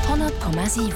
100,7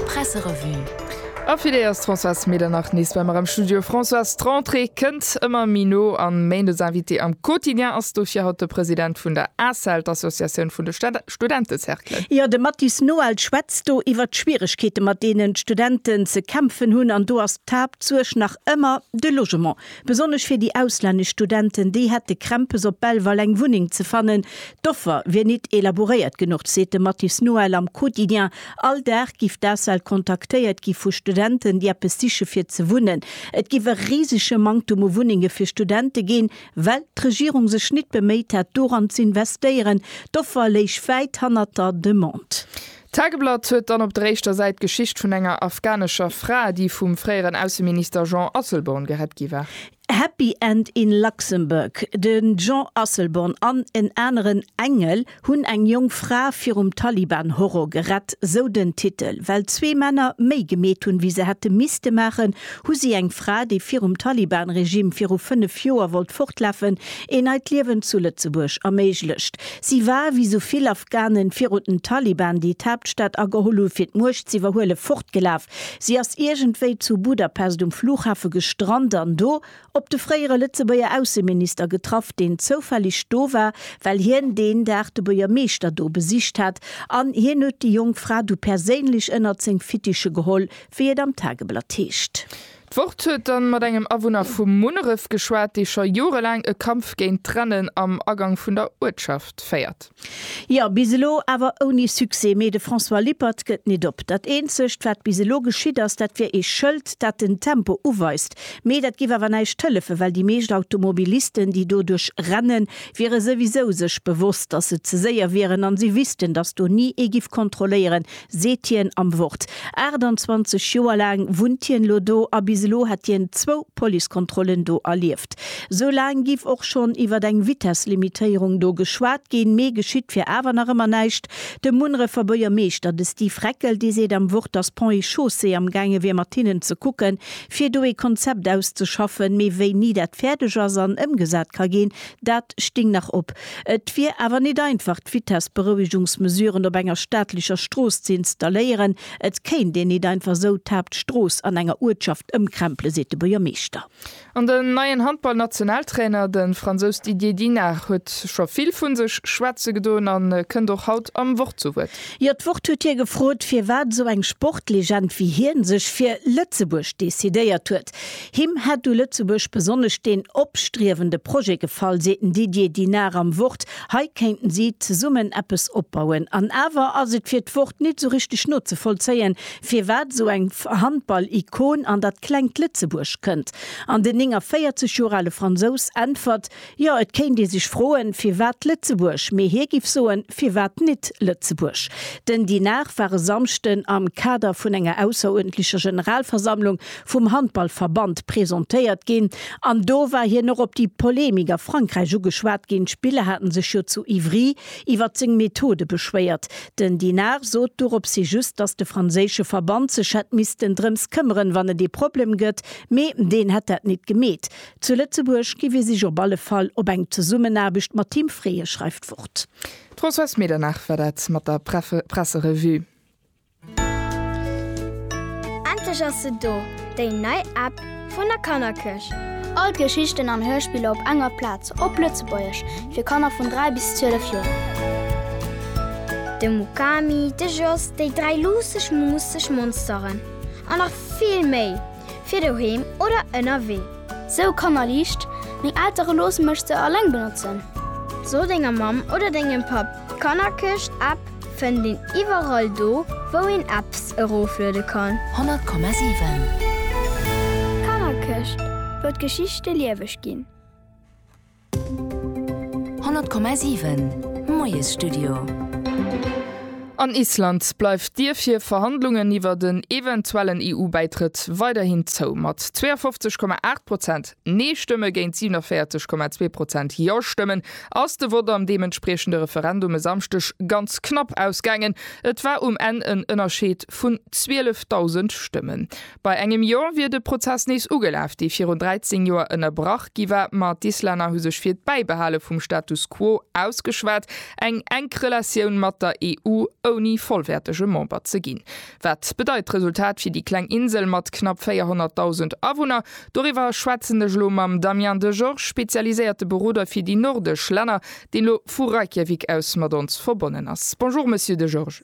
Presserevue A fir déi ass d'Françoise Medernach nees bei mer am Studio. Françoise, d'Rentrée kënnt ëmmer méi no an Méindes Invité am Quotidien ass dofir haut de President vun der Asel, d'Associatioun vun de Studentecerclen. Jo, de Mathis Noel schwätzt do iwwert d'Schwieregkeete mat deenen d'Studenten ze kämpfen hunn an do ass d'Haaptsuerg nach ëmmer de Logement. Besonnesch fir déi auslännesch Studenten, déi hätte Krämpes op Belval eng Wunneng ze fannen. D'Offer wier nit elaboréiert genuch, seet de Mathis Noël am Quotidien. All Dag giff d'ASBL kontaktéiert gi vu Studenten, déi eppes siche fir ze wunnen. Et giff e risege Manktum u Wunnenge fir Studente ginn, well d'Regierung sech nit beméit hätt doran z'investéieren. D'Offer léich wäit hannert der Demande. D'Tageblatt huet dann op der éischter Säit d'Geschicht vun enger afghanescher Fra, déi vum fréieren Ausseminister Jean Asselborn gerett gi war. Happy End in Luxembourg, De Jean Asselborn an en aneren Engel hunn eng jonk Fra virum Taliban-Horror gerett, sou den Titel. Well zwee Männer méi gemeet hunn, wéi se hätte misste maachen, hu si eng Fra, déi virum Taliban-Regime viru fënnef Joer wollt fortlafen, ee neit Liewen zu Lëtzebuerg erméiglecht. Si war, wéi sou vill Afghanen virun den Taliban, déi d'Haaptstad ageholl hu fir d'Muecht z'iwwerhuelen, fortgelaf. Si ass iergendwéi zu Budapest um Flughafe gestrant an do op de fréiere Lëtzebuerger Ausseminister getraff, deen zoufälleg do war, well hien deen Dag de Buergermeeschter do besicht hat an hien huet déi jonk Fra du perséinlech ënnert seng Fittiche geholl, wéi et am Tageblatt heescht. D'Wort huet dann mat engem Awunner vu Munneref geschwat, dee scho jorelaang e Kampf géint d'Rennen am Agang vun der Uertschaft féiert. Jo, bis elo awer ouni Succès. Mee de François Lippert gëtt nit op. Dat eenzegt, wat bis elo geschitt ass, dat wier ee Schëld, dat den Tempo uweist. Mee dat géif awer näischt hëllefen, well déi meescht Automobilisten, déi do duerch rennen, wiere souwisou sech bewosst, datt se ze séier wieren a si wüssten, datt do ni ee giff kontrolléieren, seet hien am Wort. 28 Joer laang wunnt hien elo do a bis elo hätt hien zwou Policekontrollen do erlieft. Sou laang giff och schonn iwwer eng Vitesslimitéierung do geschwat ginn, mee geschitt wier awer nach ëmmer näischt. De Munrefer Buergermeeschter, de Steve Reckel, dee seet am Wort, datt Ponts et Chaussées amgaange wier mat hinnen ze kucken, fir do ee Konzept auszeschaffen, mee wéini dat fäerdeg ass an ëmgesat ka ginn, Dat sting nach op. Et wier awer nit einfach d'Vitessberouegungsmesuren op enger staatlecher Strooss ze installéieren. Et kéint een nit einfach sou d'Haaptstrooss an enger Uertschaft ëmkrempelen, seet de Buergermeeschter. An den neien Handball-Nationaltrainer, de Fransous Didier Dinard, huet scho vill vu sech schwätze gedoen a kënnt och haut am Wort zu Wuert. Jo, d'Wort huet hie gefrot, firwat esou eng Sportlegend wéi hien sech fir Lëtzebuerg decidéiert huet. Respekt. Him hätt u Lëtzebuerg besonnesch deen opstriewende Projet gefall, seet den Didier Dinard am Wort. Hei kéinten si zesummen eppes opbauen. An awer ass et fir d'Wort nit esou richteg nozevollzéien, firwat esou eng Handball-Ikon an dat klengt Lëtzebuerg kënnt. An den 49 Joer ale Fransous äntwert, Jo, et kéint ee sech froen, firwat Lëtzebuerg, mee hie giff soen, firwat nit Lëtzebuerg? Den Dinard war e Samschden am Kader vun enger ausseruerdentlecher Generalversammlung vum Handballverband presentéiert ginn an do war hien och op déi Polemik a Frankräich ugeschwat ginn. D'Spiller haten sech jo zu Ivry iwwert seng Methode beschwéiert. Den Dinard sot doropshi just, dass de franséische Verband sech hätt missten drëms këmmeren, wann et ee Problem gëtt, mee deen hätt dat nit gemeet. Zu Lëtzebuerg gi fir sech op alle Fall op eng Zesummenaarbecht mat Team freeë, schreift Wort. D'Françoise Medernach war dat mat der Presserevue. Endlech ass se do, déi nei App vun der Kannerkirch! All d'Geschichten an Hörspiller op enger Plaz, op Lëtzebuergesch, fir Kanner vun 3 bis 12 Joer. De Mukami, de Jos, déi dräi luusseg, muusseg Monsteren an nach vill méi! fir doheem oder ënnerwee. Sou kannerliicht, meng Eltere loosse mech se alleng benotzen. So denger Mamm oder dengem Papp, d'Kannerkëscht App fënnt een iwwerall do wou een Apps erofluede kann. 100,7. D'Kannerkëscht, wou d'Geschichte lieweg ginn. 100,7 Moiesstudio. An Island bleift d'Dier fir Verhandlungen iwwert en eventuellen EU-Bäitrëtt weiderhin zou. Mat 52,8 Prozent Nee-Stëmme géint 47,2 Prozent Ja-Stëmmen ass de Vott am deementspriechende Referendum e Samschdeg ganz knapp ausgaangen. Et war um Enn en Ënnerscheed vun 12.000 Stëmmen. Bei engem Jor wier de Prozess nees ugelaf, dee virun 13 Joer ënnerbrach gi war, ma d'Islänner hu sech fir d'Bäibehale vum Status quo ausgeschwat, eng enk Relatioun mat der EU, ouni vollwäertege Member ze ginn. Wat bedeit d'Resultat fir déi kleng Insel mat knapp 400.000 Awunner? Doriwwer schwätzen ech elo mam Damien Degeorges, spezialiséierte Beroder fir déi nordesch Länner, deen elo vu Reykjavik aus mat ons verbonnen ass. Bonjour Monsieur Degeorges.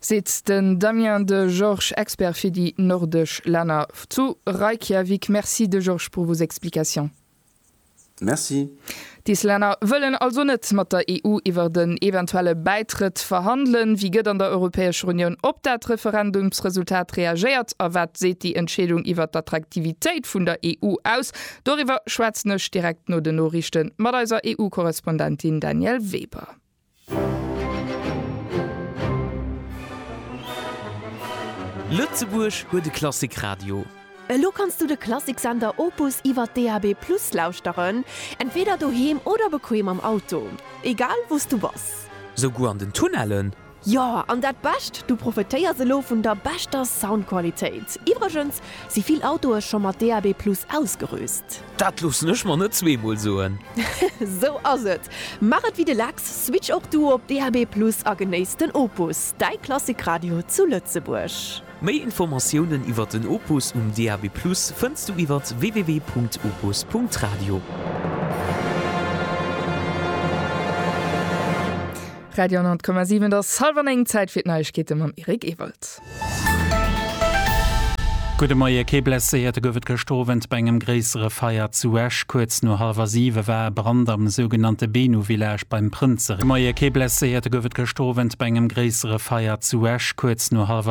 seet den Damien de Georges, Expert fir déi nordesch Länner zu Reykjavik. Merci de Georges pour vos explications. Merci. Des Länner wëllen also net mat der EU iwwert en eventuelle Bäitrëtt verhandelen. Wéi gëtt an der Europäescher Unioun op dat Referendumsresultat reagéiert a wat seet déi Entscheedung iwwert d'Attraktivitéit vun der EU aus? Doriwwer schwätzen ech direkt no den Noriichte mat eiser EU-Korrespondentin Danièle Weber. Lëtzebuerg huet e Klassikradio. Elo kanns du de Klassiksender Opus iwwer DAB+ lauschteren, entweeder doheem oder bequem am Auto. Egal wou s du bass. Souguer an den Tunnellen? Jo, an dat Bescht, du profetéiers elo vun der beschter Soundqualitéit. Iwwregens si vill Autoe scho mat DAB+ ausgerüst. Dat loossen ech mer net zweemol soen. Sou ass et! Maach et wéi de Lex, switch och du op DAB+ a genéiss den Opus, däi Klassikradio zu Lëtzebuerg. Méi Informatiounen iwwer den Opus um DAB+ fënns du iwwer www.opus.radio. Radio 100,7 Et ass hallwer 9, Zäit fir d'Neiegkeete mam Eric Ewald. Gudde Moie, kee Blesséierte gouf et gëscht Owend bei engem gréissere Feier zu Esch. Kuerz no hallwer siwe war e Brand am sougenannte Benu Village beim Prënzeree.